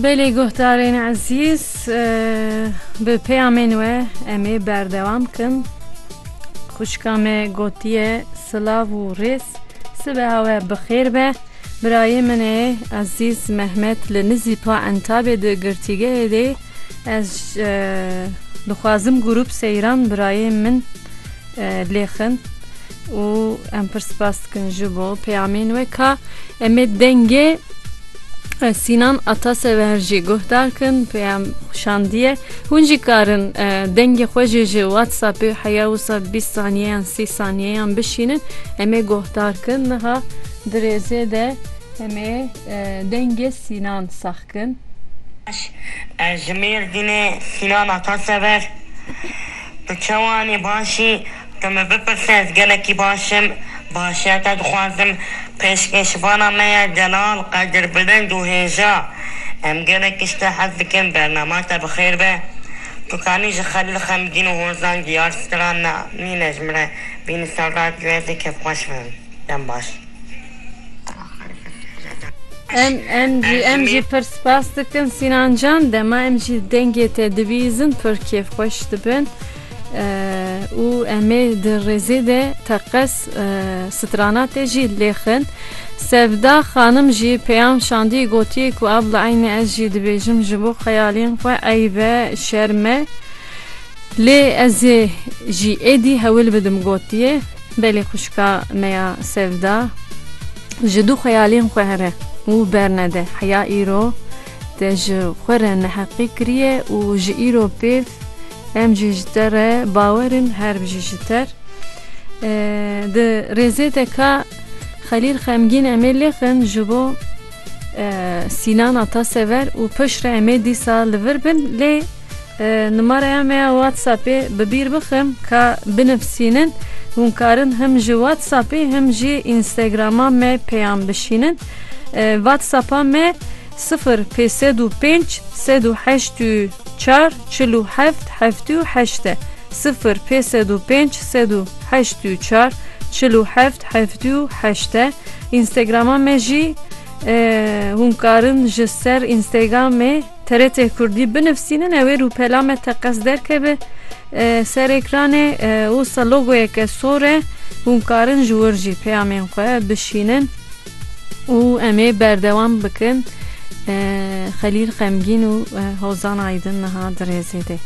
Belê guhdarên ezîz bi peyamên we em ê berdewam kin. Xwişka me gotiye silav û rêz sibeha we bi xêr be. Birayê min ê ezîz Mehmet li Nizîpa Entabê di girtîgehê dê Ez dixwazim grûp seyran birayê min lêxin û em pir spas dikin ji bo peyamên we ka em ê dengê Sînan Atasever jî guhdar kin peyam şandiye hûn jî karin dengê xwe jê ji WhatsAppê heya wisa bîst saniyeyan sî saniyeyan bişînin em ê guhdar kin niha di rêzê de em ê Dengê Sînan Saxkin. Baş ez ji Mêrdînê Sînan Atasever Tu çewanî baş î Tu min bipirse ez gelekî baş im Başiya te dixwazim Pêşkêşvana me ye Delal Qedir Bilind û Hêja Em gelek tiştê hez dikin Bernama te bi xêr be Tu kanî ji Xelîl Xemgîn û Hozan Diyar Stran ne nîne ji min re bînî ser radyoyê Zêkevxweş be Dem baş. Em jî em jî pir spas dikin Sînan Can dema em jî dengê te dibîzin pir kêfxweş dibin û emê di rêzê de teqez strana te jî lêxin. Sevda xanim jî peyam şandî gotiye ku abla eynî ez jî dibêjim ji bo xeyalên xwe eyb e şerm e lê ez ê jî êdî hewil bidim gotiye. Belê xwişka me ya Sevda ji du xeyalên xwe here û bernede. Heya îro te ji xwe re neheqî kiriye û ji îro pêv em jî ji te re bawer in her bijî ji ter. Di rêzê de ka Xelîl xemgîn emê lêxin ji bo Sînana te sever û piştre emê dîsa li vir bin lê Numaraya me ya WhatsAppê bi bîr bixim ka binivsînin. Hûn karin him ji WhatsAppê him jî Instagrama me peyam bişînin. WhatsAppa me sifir pê sed û pênc sed û heşt û çar çil û heft heftê û heşt e. Sifir pê sed û pênc sed û heşt û çar çil û heft heftê û heşt e. Instagrama me jî hûn karin ji ser Instagramê. TRT Kurdî binivîsînin ew ê rûpela me teqez derkeve ser ekranê. Wisa logoyeke sor e, hûn karin ji wir jî peyamên xwe bişînin û em ê berdewam bikin. Xelîl Xemgîn û Hozan Aydin niha di rêzê de.